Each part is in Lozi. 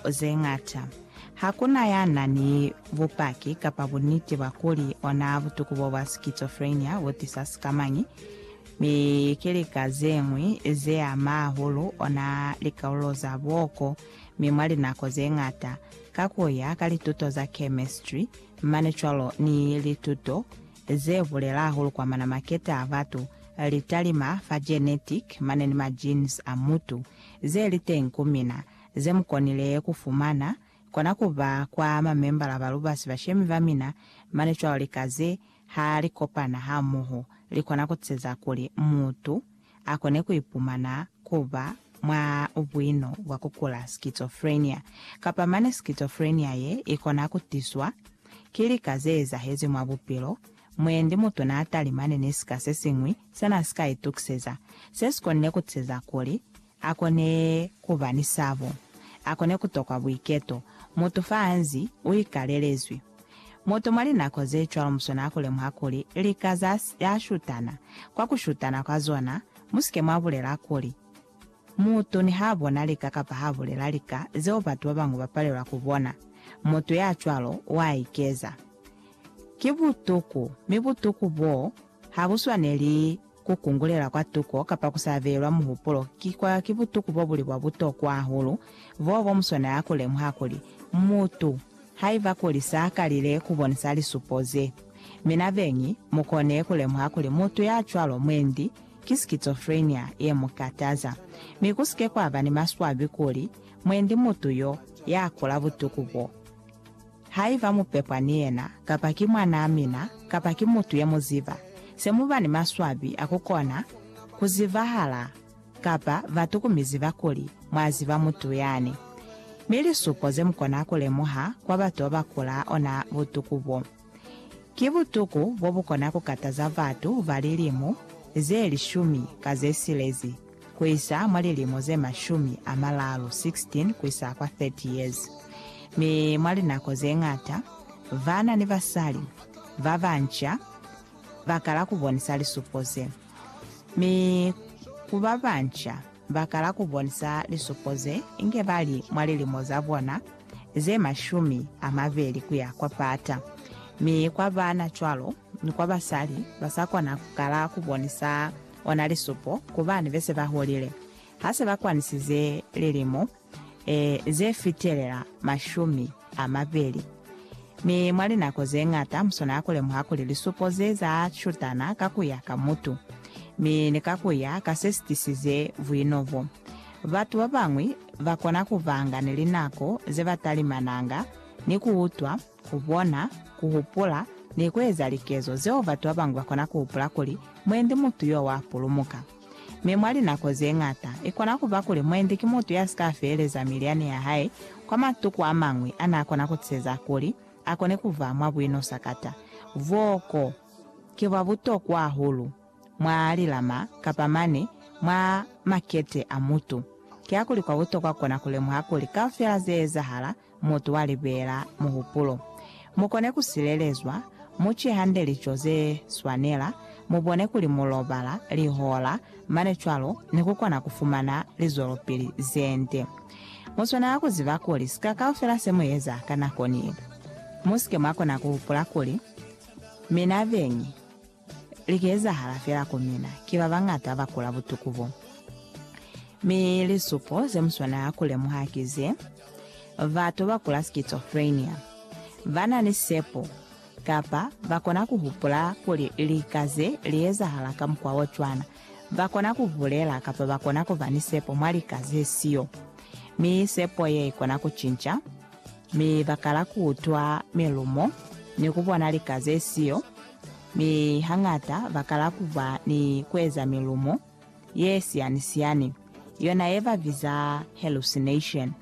ze ñata. Ha ku na ya na ni bupaki kapa buniti bwa kuli ona butuku bo bwa schizophrenia bu tisa sikamañi, mi ki lika ze ñwi ze ama hahulu ona likaulo za bwoko, mi mwa linako ze ñata, ka ku ya ka lituto za chemistry, mane cwalo ni lituto ze bulela hahulu kwa mana maketa a batu, litalima fa genetic mane ni ma genes a mutu, ze li teñi ku mina, ze mu konile ku fumana, kona ku ba kwa mamembala ba lubasi bashemi ba mina, mane cwalo lika ze, ha li kopana hamoho, li kona ku ceza kuli mutu a kone ku ipumana ku ba mwa buino bwa ku kula schizophrenia, kapa mane schizophrenia ye i kona ku tiswa ki lika ze ezahezi mwa bupilo, mwendi mutu n'a talimane ni sika se siñwi se n'a si ka itukiseza, se si konile ku ceza kuli A kone ku ba ni sabo. A kone ku tokwa buiketo. Mutu fa hanzi u ikalelezwi. Mutu mwa linako ze cwalo mu swanela ku lemuha kuli lika za ya shutana, kwa ku shutana kwa zona, mu si ke mwa bulela kuli, Mutu niha bona lika kapa ha bulela lika zeo batu ba bañwi ba palelwa ku bona, mutu ya cwalo wa ikeza. Ki butuku, mi butuku boo ha bu swaneli Ku kungulela kwa tuko kapa ku sa beelwa muhupulo ki kwa ki butuku bo buli bwa butokwa hahulu boo bo muswana ya ku lemuha kuli, mutu, haiba kuli sa kalile ku bonisa lisupo ze. Mi na beñi mu kone ku lemuha kuli mutu ya cwalo mwendi ki schizophrenia ye mu kataza. Mi ku si ke kwa ba ni maswabi kuli mwendi mutu yo ya kula butuku bo. Haiba mu pepwa ni yena, kapa ki mwanaa mina, kapa ki mutu ye mu ziba, se mu ba ni maswabi a ku kona ku zibahala kapa batu ku mi ziba kuli mwa ziba mutu yani. Mi lisupo ze mu kona ku lemuha kwa batu ba ba kulaa ona butuku bo, ki butuku bo bu kona ku kataza batu ba lilimu ze lishumi ka ze silezi. ku isa mwa lilimo ze mashumi a malalu, 16 ku isa kwa 30 years, mi mwa linako ze ñata bana ni basali ba banca ba kala ku bonisa lisupo ze. Mi ku ba banca ba kala ku bonisa lisupo ze inge ba li mwa lilimo za bona ze mashumi a mabeli ku ya kwa pata, mi kwa bana cwalo ni kwa basali ba sa kona ku kala ku bonisa ona lisupo ku bana be se ba hulile ha se ba kwanisize lilimo e, ze fitelela mashumi a mabeli. Mi mwa linako ze ñata musona ku lemuha kuli lisupo ze za shutana ka ku ya ka mutu, mi ni ka ku ya ka se si tisize buino bo. Batu ba bañwi ba kona ku banga ni linako ze ba talimananga ni ku utwa, Ku bona, ku hupula, ni ku eza likezo zeo batu ba bañwi ba kona ku hupula kuli mwendi mutu yo wa pulumuka. Mi mwa linako ze ñata, i kona ku ba kuli mwendi ki mutu ya si ka feleza milyani ya hae kwa matuku a mañwi a n'a kona ku tiseza kuli a kone ku ba mwa buinosakata. Bwoko ki bwa butokwa hahulu mwa lilama kapa mane mwa makete a mutu. Kiakuli kwa butokwa ku kona ku lemuha kuli kaufela ze ezahala mutu wa libeela muhupulo. Mu kone ku silelezwa, mu ce hande lico ze swanela, mu bone kuli mu lobala lihola mane cwalo ni ku kona ku fumana lizwelopili ze nde. Mu swanela ku ziba kuli sika kaufela se mu eza ka nako ni. Mu si ke mwa kona ku hupula kuli, Mi na beñi? Li ka ezahala fela ku mina. Ki ba bañata ba kula butuku bo. Mi lisupo ze mu swanela ku lemuha ki ze, Batu ba kula schizophrenia ba na ni sepo, kapa ba kona ku hupula kuli lika ze li ezahala ka mukwa o cwana. Ba kona ku bulela kapa ba kona ku ba ni sepo mwa lika ze siyo. Mi sepo ye i kona ku cinca. mi ba kala ku utwa milumo ni ku bona lika ze siyo, mi hañata ba kala ku ba ni ku eza milumo ye siyani-siyani, yona ye ba biza hallucination.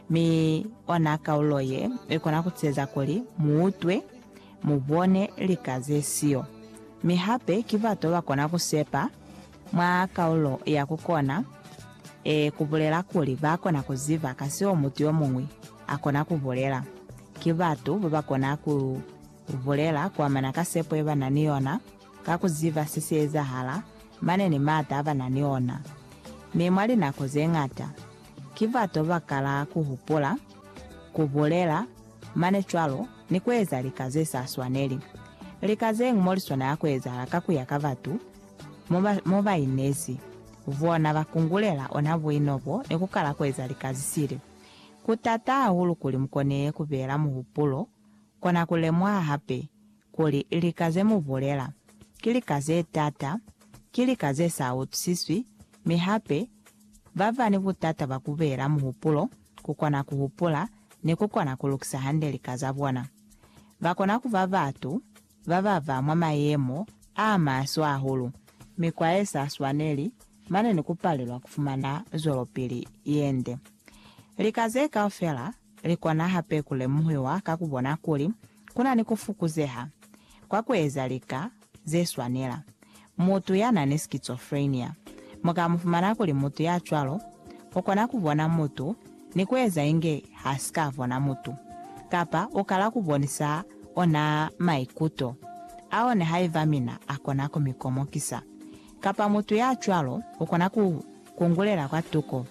Mi ona kaulo ye i kona ku eza kuli mu utwe, mu bone lika ze siyo. Mi hape ki bato ba kona ku sepa Mwa kaulo ya ku kona, e kubulela kuli ba kona ku ziba ka seo mutu yo muñwi a kona ku bulela. Ki batu ba ba kona ku bulela kuamana ka sepo ye ba na ni yona, ka ku ziba se si ezahala, mane ni maata a ba na ni ona. Mi mwa linako ze ñata, ki batu ba ba kala ku hupula, ku bulela, mane cwalo ni ku eza lika ze sa swaneli. Lika zeñwi mo liswanela ku ezahala ka ku ya ka batu. Mo ba, mo ba inezi, bona ba kungulela ona buino bo ni ku kala ku eza lika zisili. Ku taata hahulu kuli mu kone ku beela muhupulo, kona ku lemuha hape kuli lika ze mu bulela ki lika ze taata, ki lika ze sa utusiswi, mi hape ba ba ni butata bwa ku beela muhupulo ku kona ku hupula ni ku kona ku lukisa hande lika za bona. Ba kona ku ba batu ba ba ba mwa mayemo a maswe hahulu, mikwa ye sa swaneli, mane ni ku palelwa ku fumana zwelopili ye nde. Lika ze kaufela li kona hape ku lemuhiwa ka ku bona kuli ku na ni ku fukuzeha kwa ku eza lika ze swanela, Mutu ya na ni schizophrenia mu ka mu fumana kuli mutu ya cwalo u kona ku bona mutu ni ku eza inge ha si ka bona mutu, kapa u kala ku bonisa ona maikuto a one haiba mina a kona ku mi komokisa. Kapa mutu ya cwalo u kona ku kungulela kwa tuko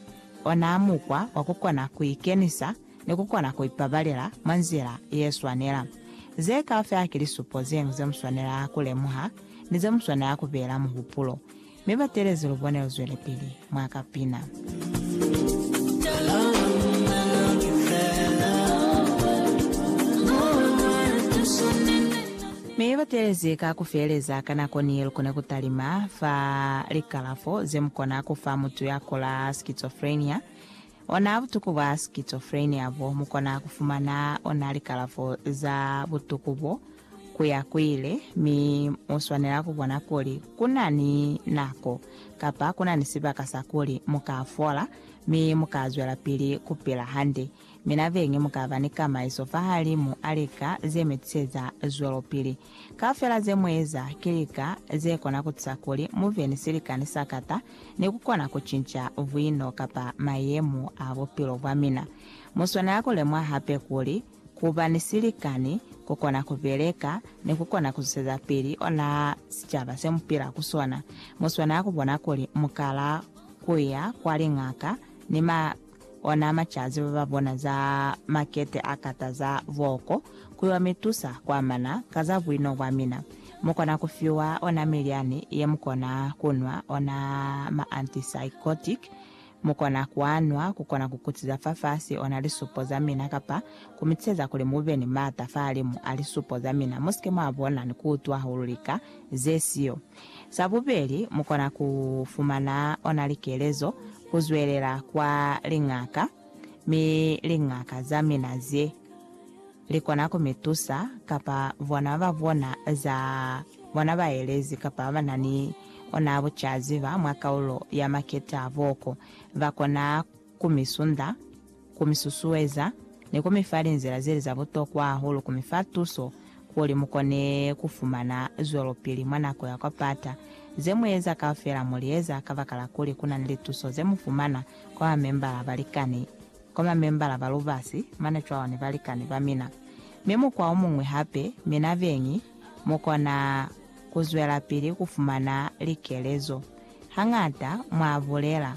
ona mukwa wa ku kona ku ikenisa ni ku kona ku ipabalela mwa nzila ye swanela. Ze kaufela ki lisupo zeñwi ze mu swanela ku lemuha ni ze mu swanela ku beela muhupulo. Mi batelezi lu bone luzwelepili mwa ka pina. Mi batelezi ka ku feeleza ka nako ni lu kone ku talima fa likalafo ze mu kona ku fa mutu ya kula schizophrenia. Ona butuku bwa schizophrenia bo mu kona ku fumana ona likalafo za butuku bo ku ya ku ile, mi mu swanela ku bona kuli ku na ni nako kapa ku na ni sibaka sa kuli mu ka fola mi mu ka zwelapili ku pila hande. Mi nabeñi mu ka ba ni kamaiso fahalimu a lika ze mi tiseza zwelopili. Kaufela ze mu eza ki lika ze kona ku tusa kuli mu be ni silikani sa kata ni ku kona ku cinca buino kapa mayemo a bupilo bwa mina. Mu swanela ku lemuha hape kuli ku ba ni silikani ku kona ku beleka ni ku kona ku zusezapili ona sicaba se mu pila ku sona. Mu swanela ku bona kuli mu kala ku ya kwa liñaka ni ma Ona macazi ba ba bona za makete a kata za voko kuli wa mi tusa ku amana ka za buino bwa mina. Mu kona ku fiwa ona milyani ye mu kona ku nwa, ona ma antipsychotic. Mu kona ku a nwa ku kona ku kutiza fafasi ona lisupo za mina kapa ku mi tiseza kuli mu be ni m'ata fahalimu a lisupo za mina, mu si ke mwa bona ni ku utwa hahulu lika ze siyo. Sa bubeli, mu kona ku fumana ona likelezo ku zwelela kwa liñaka, mi liñaka za mina ze li kona ku mi tusa, kapa bona ba bona za bona baelezi kapa ba na ni ona bucaziba mwa kaulo ya maketa boko ba kona ku mi sunda. ku mi susueza, ni ku mi fa linzila ze li za butokwa hahulu ku mi fa tuso kuli mu kone ku fumana zwelopili mwa nako ya kwa pata. Ze mu eza kaufela mu li eza kabakala kuli ku na ni lituso ze mu fumana kwa mamembala balikani, kwa mamembala ba lubasi mane cwalo ni balikani ba mina. Mi mukwa o muñwi hape, mina beñi mu kona ku zwelapili ku fumana likelezo. Hañata mwa bulela.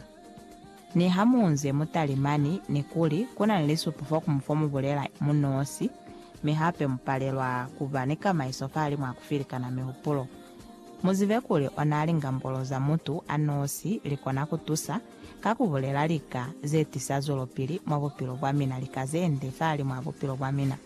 Ni ha mu nze mu tali mani, ni kuli, Ku na ni lisupo fa ku mu fa mu bulela mu nosi, mi hape mu palelwa ku ba ni kamaiso fahalimw'a ku filikana mihupulo. Mu zibe kuli ona lingambolo za mutu a nosi li kona ku tusa ka ku bulela lika ze tisa zwelopili mwa bupilo bwa mina, lika ze nde fahalimw'a bupilo bwa mina.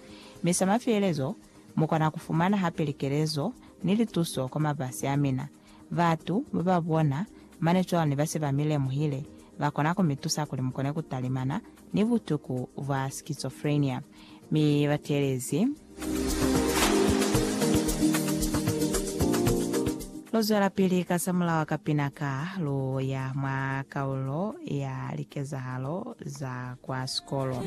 Mi sa mafielezo, mu kona ku fumana hape likelezo ni lituso kwa mabasi a mina. Batu ba ba bona mane cwalo ne ba se ba mi lemuhile, ba kona ku mi tusa kuli mu kone ku talimana ni butuku bwa schizophrenia. Mi ba teelezi. Lu zwelapili ka sa mulawa ka pina ka lu ya mwa kaulo ya likezahalo za kwa sikolo.